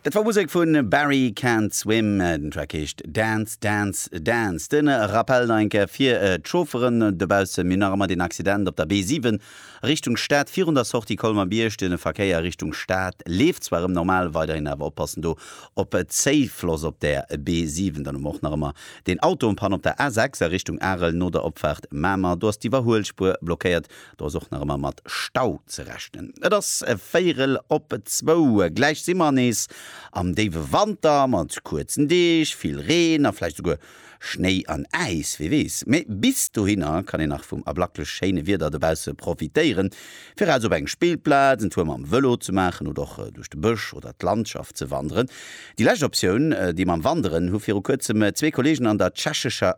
Dat war Musek vu Barry Can't Swim, den Track heescht Dance, Dance, Dance. De Rappel nach eng Kéier fir d'Chaufferen dobaussen, Mir hunn nach ëmmer deen Accident op der B7 Richtung Stad virun der Sortie Colmer-Bierg. De Verkéier Richtung Stad leeft zwar erëm normal, weiderhin awer oppassen do op Zéifloss op der B7. Dann hu mer och nach ëmmer deen Auto en Panne op der A6 a Richtung Arel no der Opfaart Mamer, do ass d'Iwwerhuelspuer blockéiert. Do ass och nach ëmmer mat Stau ze rechnen. Et ass véierel op zwou. Gläich si mer nees am déiwe Wanter mat kuerzen Deeg, vill Reen a vläicht esouguer Schnéi an Äis, wie weess. Mee bis dohinner kann een nach vum ablaklech schéine Wieder dobausse profitéieren, fir raus op eng Spillplaz, en Tour mam Vëlo ze maachen oder och duerch de Bësch oder d'Landschaft ze wanderen. Déi lescht Optioun, déi mam Wanderen, hu viru kuerzem zwee Kolleegen an der Tschechescher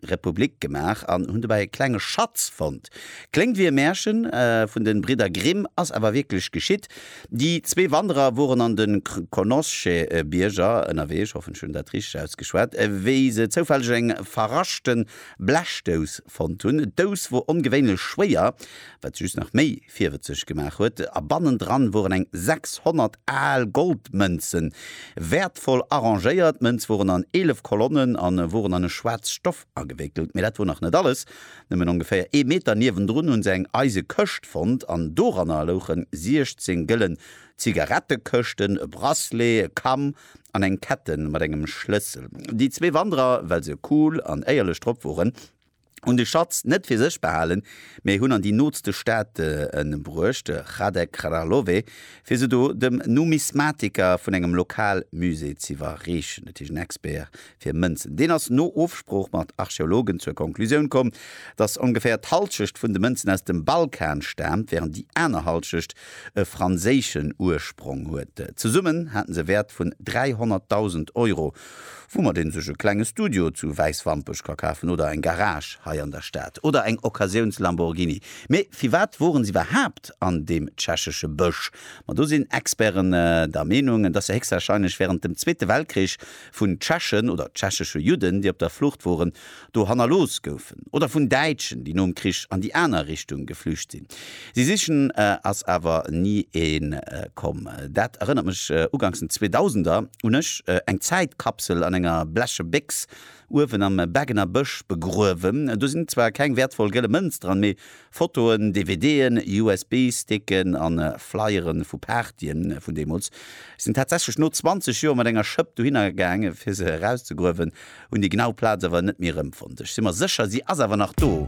Republik gemaach an hunn dobäi e klenge Schatz fonnt. Kléngt wéi e Märchen vun de Bridder Grimm, ass awer wierklech geschitt. Déi zwee Wanderer woren an de Krkonoše-Bierger ënnerwee, ech hoffen ech hunn dat richteg ausgeschwat, wéi se zoufälleg eng verraschte Blechdous fonnt hunn. D'Dous wor ongewéinlech schwéier, wat se just nach méi virwëtzeg gemaach huet, a bannendran woren eng 600 al Goldmënzen, wäertvoll arrangéiert. D'Mënz woren an 11 Kolonnen an woren an e schwaarzt Stoff agewéckelt. Mee dat wor nach net alles, nëmmen ongeféier ee Meter niewendrun hun se eng eise Këscht fonnt an doranner louchen 16 gëllen Zigarettekëschten, e Bracelet, e Kamm an eng Ketten mat engem Schlëssel. Déi zwee Wanderer, well se cool an éierlech drop woren, hunn de Schatz net fir sech behalen, mee hunn an déi nootste Staate bruecht, Hradec Kralove, fir se do dem Numismatiker vun engem Lokalmusée z'iwwerreechen. Dat heescht en Expert fir Mënzen. Deen ass no Ofsprooch mat Archeologen zur Konklusioun komm, datt ongeféier d'Hallschecht vun de Mënzen aus dem Balkan staamt, wärend déi aner Hallschecht e franséischen Ursprong huet. Zesummen haten se e Wäert vun 300.000 Euro. woumat een sech e klenge Studio zu Wäiswampech ka kafen oder eng Garage hei an der Stad oder eng Occasiouns-Lamborghini. Mee firwat woren se iwwerhaapt an deem tschechesche Bësch? Ma do sinn Experten der Meenung, dass se héchstwahrscheinlech wärend dem Zweete Weltkrich vun Tschechen oder tschechesche Judden, déi op der Flucht woren, do hannerlooss goufen, oder vun Däitschen, déi nom Krich an déi aner Richtung geflücht sinn. Si sichen ass awer ni ee komm. Dat erënnert mech uganks den Zweedausender un ech, eng Zäitkapsel an enger bleche Béchs uewen am Beggener Bësch begruewen. Do sinn zwar keng wäertvoll gëlle Mënz dran, mee Fotoen, DVDen, USB-Sticken a Flyere vu Partye vun deemools. Ech sinn tatsächlech no 20 Joer mat enger Schëpp dohinner gaangen, fir se erauszegruewen. Hunn déi genau Plaz awer net méi erëmfonnt. Ech si mer sécher, si ass awer nach do.